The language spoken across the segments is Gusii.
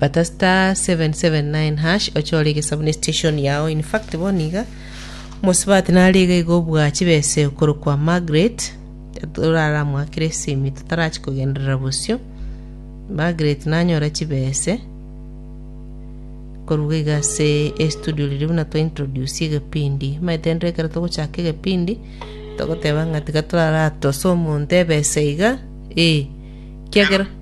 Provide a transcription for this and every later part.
Bata *779# ochore egesabuni station yao in fact bono iga omosubati nare iga iga obua chibese okorokwa Margaret toraramwakire esimi totarachi kogenderera bosio Margaret nanyora chibese koruga iga ase estudio riria buna twa introduce egepindi maete rende ekero togochaka egepindi togoteba ng'a tiga toraratosa omonto ebese iga eh kiagera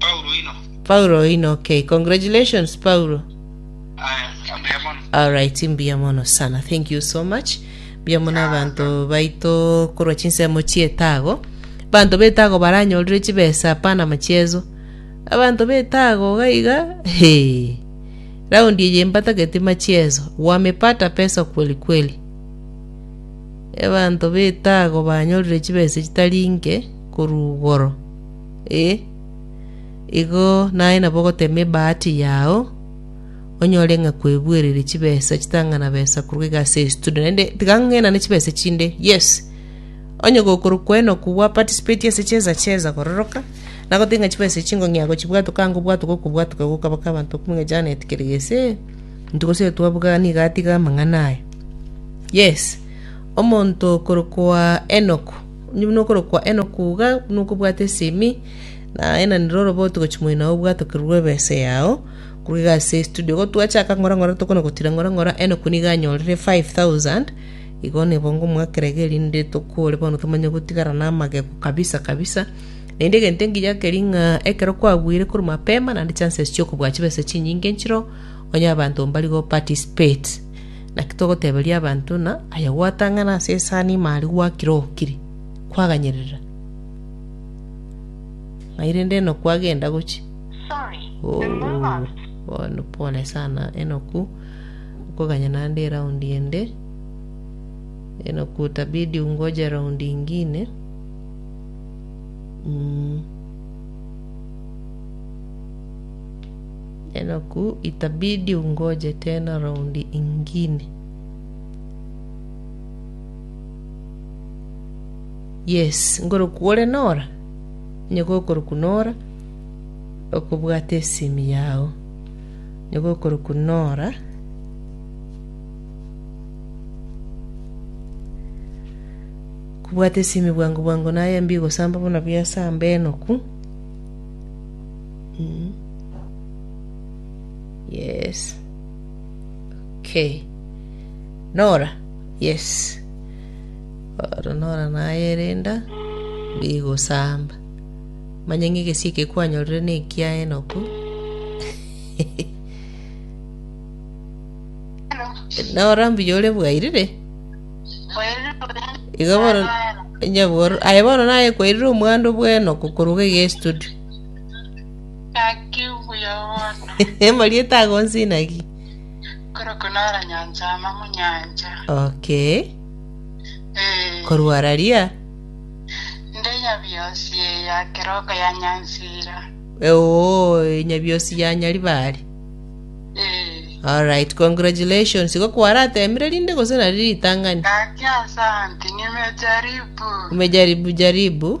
Paulo oino. Paulo oino, okay. Congratulations, Paulo. Aya, ambuya mono. Alright, mbuya mono sana. Thank you so much. Mbuya mono abanto baito korwa chinsemo chietago. Abanto betago baranyorire chibesa apana machiezo. Abanto betago gaiga, he. Raundi eye mbatageti machiezo. Wamepata pesa kweli kweli. Abanto betago banyorire chibesa chitari nke korwa igoro. Ee, igo naye nabo ogotema ebahati yao, onyore ng'a kwebuereire chibesa chitang'ana besa korwa iga ase estudio. Naende tiga ng'enane chibesa chinde, yes. Onye gokorwa kwenoku gwa participate ase cheza cheza kororoka, nagotebi ng'a chibesa echi ngong'ea gochibwatoka anga obwatoke okobwatoka gokaba ka abanto okobua ng'a Janet Keregese, intwe gose twabuga nigo atiga amang'ana aya. Yes, omonto okorokwa Enoku. Onye nokorokwa Enoku iga nokobwate esimi, naye na nere oroboti gochia moino ao obwatokerwe ebesa yao, korwa iga ase estudio. Igo twachaka ng'ora ng'ora tokona gotira ng'ora ng'ora Enoku nigo anyorire 5000, igo nigo ngomoakera iga erinde tokore bono tomanye gotigara na amagego kabisa kabisa. Naende egento engiya keria ng'a ekero kwabuire korwa mapema naende chances chiokobua chibesa chinyinge nchireo, onye abanto mbari go participate. Naki togoteberia abanto ng'a aye gwatang'ana ase esani ime aria gwakire ogokiri, kwaganyerera? Ng'ai rende enoku agenda gochia? Oo, bono pole sana enoku okoganya naende eraundi ende. Enoku utabidi ungoje raundi ingine. Mm. Enoku itabidi ungoje tena round ingine. Yes, ngoroku ore nora? Onye gokoroku nora, okobwata esimi yao. Onye gokoroku nora, kobwata esimi bwango bwango naye mbi gosamba buna biasamba enoku. Mm. Yes. Okay. Nora. Yes. Oro Nora nayerenda bigosamba. Manye ng'egesi ekekwanyorire nekia Enoku. Hello. Nora mbuya ore bwairire. Bwairire Iga bono nyaboro aye bono naye kwairire omwando bw'Enoku koruga iga estudio. Naki buya bono. Emorieta agonsi naki. Korokwa nara nyancha ama munyancha. Okay. Eh. Korwa raria. Nde nyabiosi ya keroko ya nyansira. Oo, nyabiosi ya nyaribari. Eh. All right, congratulations. Igo kwaratemire rinde gose nari ritang'ani. Naki asante nimejaribu. Umejaribu jaribu.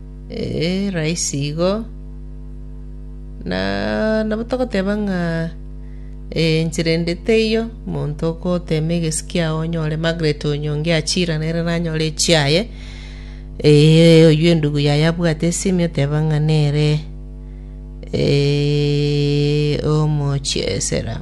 Ee, raisi igo. Na nabo togoteba ng'a ee, enchera ende teiyo, monto okoteema egesi kiao onyore Margaret onyonge achira nere nanyore echiaye. Ee, oyio endugu yaye abwate esimi oteba ng'a nere ee, omochiesera.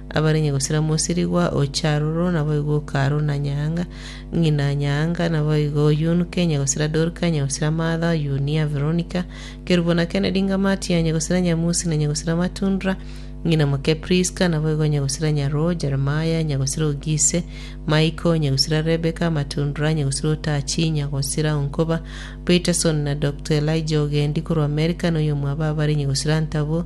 Abarenge gosira mosirigwa o Charuro naboigo o Karu na Nyaanga, ng'ina Nyaanga, naboigo o Yun, Kenya gosira Dorka, onye gosira Martha, Yunia, Veronika, Kerubo na Kennedy, Ngamatia, onye gosira Nyamusi, na onye gosira Matundra, ng'ina moke Priska, naboigo onye gosira Nyaroo, Jeremiah, onye gosira o Gise, Michael, onye gosira Rebeka, Matundra, onye gosira o Tachi, onye gosira o Nkoba, Peterson, na Doctor Elijah ogendi korwa Amerika, na oyomwabo abare onye gosira Ntabwo,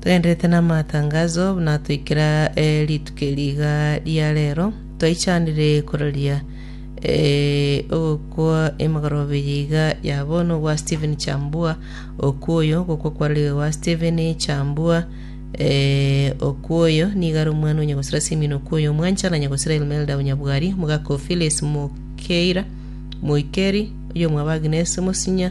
Toenderete namatangaso, buna toikera rituko eri iga ria rero, twaichanire kororia ogokwa emegoroba eye iga ya bono gwa Stephen Chambua, okwo oyo gokwa kwarorire gwa Stephen Chambua, okwo oyo nigo are omwana o nyagosera Simeon okwo oyo omwancha, na nyagosera Elmelda o Nyabwari, omogaka o Phyllis Mokeira, moikeri, oyomwabo Agnes Mosinya,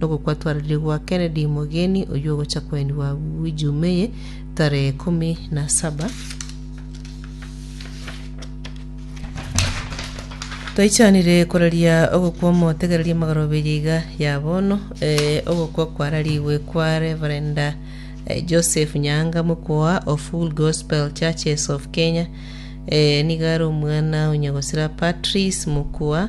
nogokwa twarire gwa Kennedy Mogeni oyio ogocha koenigwa agwo ejuma eye tarehe ikomi na saba Twaichanire koraria ogokwa omotegereria amagaroberi iga ya bono eh, ogokwa kwararigwe kwa Reverenda eh, Joseph Nyanga mokwoa of Full Gospel Churches of Kenya eh, niga are omwana onyagosira Patrice mokwoa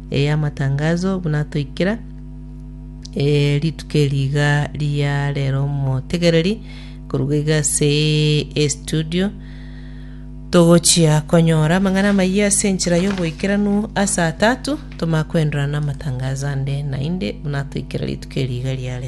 ey'amatangazo buna toikera eh, rituko eri iga ria rero omotegereri koruga iga ase estudio togochia konyora amang'ana amayia ase enchera y'oboikeranu ase atatu tomakwendorana n'amatangazo ande naende buna toikera rituko eri iga ria rero